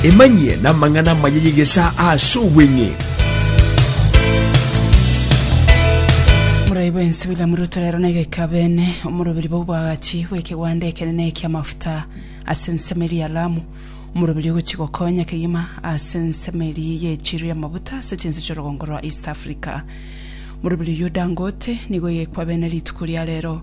Emanyie namang'ana amaya y'egesaa aase obweng'e. Omorai bwensi William Ruto rero nigo ekabene omorobiri bw'oboagachi bw'ekegwanda ekenene ki'amafuta ase ensemo eria ya Lamu, omorobiri ogochia gokonya kegima ase ensemo eria y'echiru y'amafuta ase chinse chi'orogongo rwa East Africa. Morobiri oyio Dangote nigo oyekwabene rituko ria rero.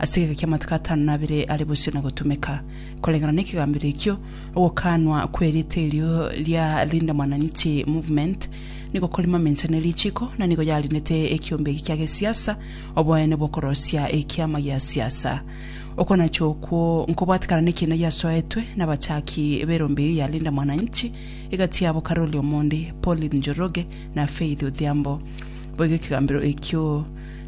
Ase egeka ki'amatuko atano na abere are bosio na gotumeka, koreng'ana n'ekegambero ekio, ogokaanwa kw'erieta erio ria Linda Mwananchi Movement nigo kore mamencha ne richiko, na nigo yarindete ekiombe eki kia gesiasa oboene bw'okorosia ekiama gia siasa. Okonacha okwo nkobwatekana nekiina giasoetwe n'abachaki b'erombe eyio ya Linda Mwananchi, egati yabo Karoli Omondi, Pauline Njoroge, na Faith Odhiambo. Boigo ekegambero ekio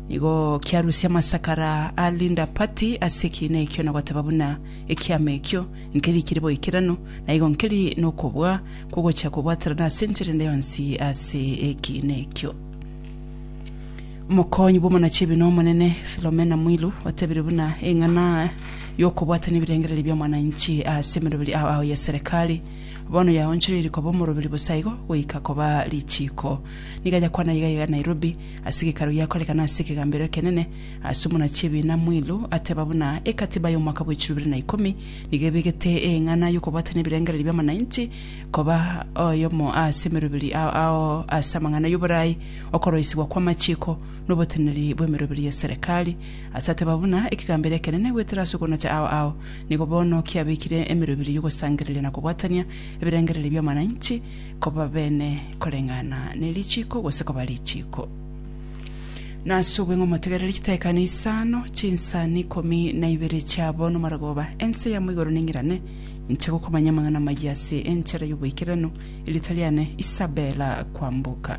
Nigo kiarusia amasakara a Linda Patti ase ekiina ekio na goteba buna ekiama ekio nkeri kire boikeranu, na igo nkeri nokobua kw'ogochia kobwaterana ase enchera ende yonsi ase ekiina ekio. Omokonyi bw'omonachiebini omonene, Philomena Mwilu, otebirie buna eng'ana y'okobwatania ebirengererio bi'omwananchi ase emeroberi ao ao ya serekari bono yaonchoreirie koba omoroberi bosa igo goika koba richiiko. Nigo ayakwana iga iga Nairobi, Ase Gekaro giakorekana ase ekegambero ekenene, ase omona chi'ebiina Mwilu ateba buna Ekatiba y'omwaka bw'echiro ibere na ikomi nigo ebegete eeng'ana y'okobwatana ebirengererio bi'amanainchi koba oyomo ase emeroberi ao ao ase amang'ana y'oboraai, okoroisigwa kw'amachiko, noboteneneri bw'emeroberi ye serekari. Ase ateba buna ekegambero ekenene goetera ase okonacha ao ao nigo bono kiabekire emeroberi y'ogosangereria na kobwatania ebirengererio bi'amanainchi, koba beene koreng'ana ne richiiko gose koba richiiko. Na ase obweng'u omotegerere chitaikano isano, chinsani ikomi na ibere chiabo nomarogooba, ense yamo igoro neng'irane, inche gokomanya amang'ana amayia ase enchera y'oboikeranu, erieta riane Isabela kwamboka.